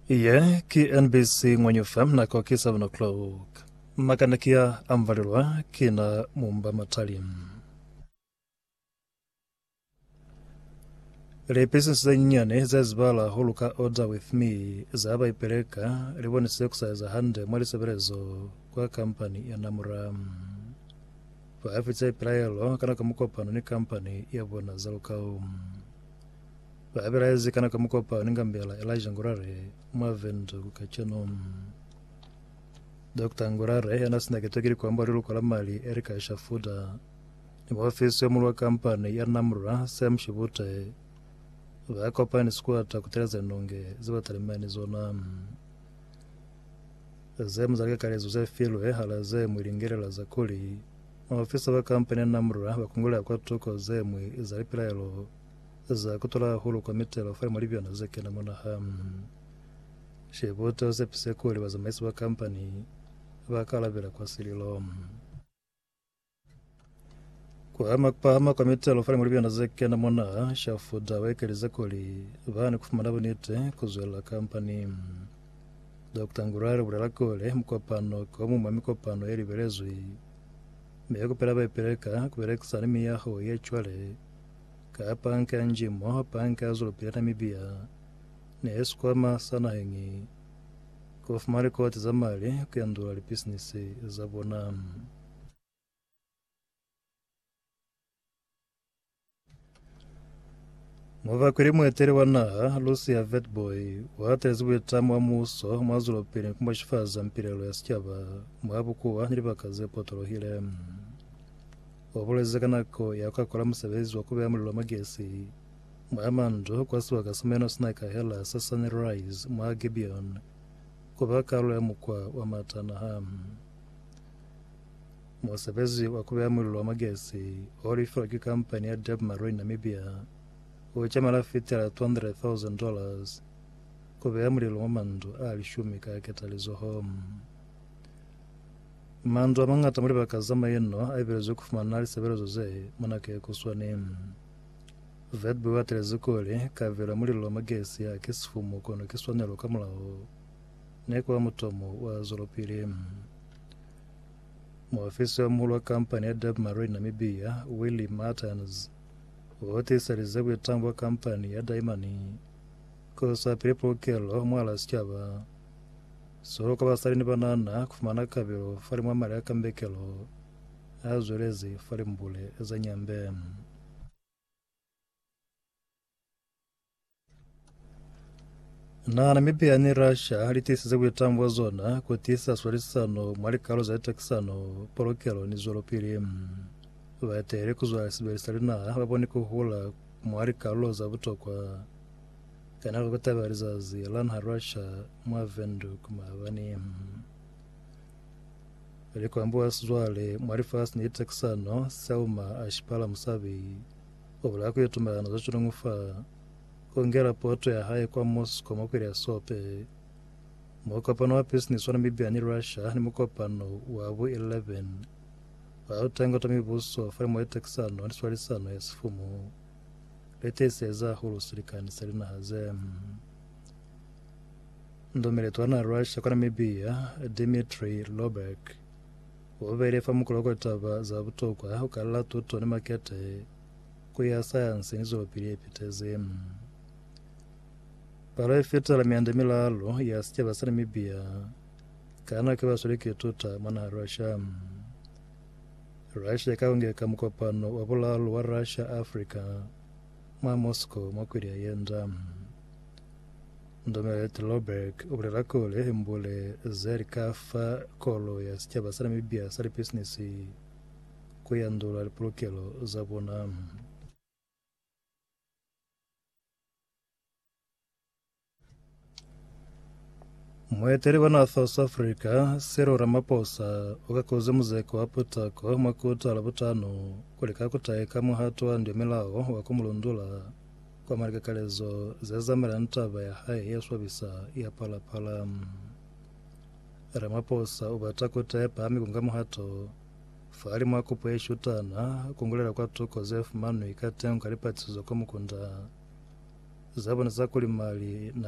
Ye ki NBC Ngwenyufa nako ki 7 o'clock. Makana ki a amvalelwa ki na mumba matali. Lipesisi ze nyinyani ze zibala ho luka Order With Me za ba ipeleka li bonisize ku sa eza hande mwa lisebelezo kwa kampani ya Namura. Ba fize pilaelo ka nako ya mukopano ni kampani ya bona za lukau. Ba belaezi kana ka mukopani nga mbela Elijah Ngurare mwa Windhoek kacenu. Dokita Ngurare yana sina keto ki likombwa ha liluko la mali Erica Shafuda ni muofisi yo mulu wa kampani ya Namra Sam Shibute ba kopani ni sikuata ku teleza linonge ze ba talimani ni zona. Ze mu za likakalezo ze filwe hala ze mu lingelela za kuli maofisa ba kampani ya Namra ba kungulea kwa tuko ze mwi za lipilaelo Za kutula hahulu kwa mitelo fa limolibiyona ze kena mwa naha. Shebuta u sepise kuli bazamaisi ba kampani ba ka alabela kwa sililo. Ku ama ku pahama kwa mitelo fa limolibiyona ze kena mwa naha, Shafuda u ekelize kuli ba ni ku fumana buniti ku zwelela kampani. Dokta Ngurare u bulela kuli mukopano ki o muñwi mwa mikopano ye libelezwi, mi ku pela ba ipeleka ku belekisana ni miyaho ye cwale. Ka panka nji moho panka zulu pila na mibia ne sikwama sa naheñi ku fuma likoti za mali ku yandula lipisinisi za bona. Mubakweli mueteli wa naha Lucia Vetboy uatelezi buitamo bwa muuso mwa zulu pili ni ku mashifaza mpilelo ya sicaba mwa bukuwa ni libaka ze potolohile. Ubulezi ka nako ya ku akola musebezi wa kubeya mulilo mwa gesi mwa mandu kwa sibaka sa meno sina kahela sa Sunrise mwa Gibeon kuba kalulo ya mukwa wa matanaha. Musebezi wa kubeya mulilo mwa gesi o lifilwa ki kampani ya Deb Marine Namibia u cemela fitela $200,000 kubeya mulilo mwa mandu a lishumi ka ketalizoho. Mandu a mañata mwa libaka za maino a ipelezwe ku fumana lisebelezo ze mona ke ku swani. Verb u atelezi kuli, Kabelo ya mulilo wa magesi ha ki sifumu kono ki swanelo ka mulaho ne ku ba mutomo wa zwelopili. Muofisi wa muhulu wa kampani ya Deb Marine Namibia, Willie Martens, u tiiselize buitango bwa kampani ya Daimani ku sa pili pulukelo mwahal'a sicaba. Solo ka basali ni banana ku fumana kabelo fa limwamali a kambekelo a zwelezi fa limbule za Nyambe. Na Namibia ni Russia li tiisize buitamo bwa zona ku tiisa swalisisano mwa likalo za litakisano, polokelo ni zwelopili. Baeteli ku zwa lisibeli sa linaha ba boni ku hula mwa likalolo za butokwa. Kana lu kutaba lizazi la nha lwa ca mwa Windhoek maabani? Ili kwambuwa sizwale mwa lifasi ni tekisano, Selma a shipala musabi o bulaya ku itumelana za cilungu fa o ngela poto ya hae kwa Moscow mwa kwili ya sope. Mukopano wa bisinisi wa Namibia ni Russia ni mukopano wa bu 11 wa lutengo twa mibuso fa limo ye tekisano ni swalisano ya sifumu. Letese za hulu silikani sa linaha ze ndumile twana Russia kwa Namibia, Dmitry Lobek, ubele fa mukolo kwa taba za butokwa ku kalala tuto ni makete ku ya sayansi ni zwelopili ye pitezi. Palo ye fitela mianda milalo ya sicaba sa Namibia ka nako ibasweli ki tuta mwa naha Russia. Russia ikaungeka mukopano wa bulalu wa Russia-Africa mwa Moscow mwa kwili yayenda. Ndomela Ettelbreck ubulela kuli himbule zeli kafa kolu ya sicaba sa Namibia sa lipisinisi kuyandula lipulukelo zabona. Mueteli wa naha South Africa, Cyril Ramaphosa, u kakuze muzeko wa putako mwa kota la butano ku lika ku taeka muhato wa ndyomilao wa ku mu lundula kwa malikakalezo ze zamelani taba ya hae ye swabisa ya Phala Phala. Ramaphosa u bata kota ye pahami ku nga muhato Fahalimu a kupo ye shutana, kungulela kwa tuko ze fumanwi ka tengo ka lipatisizo kwa mukunda za bona za kuli mali na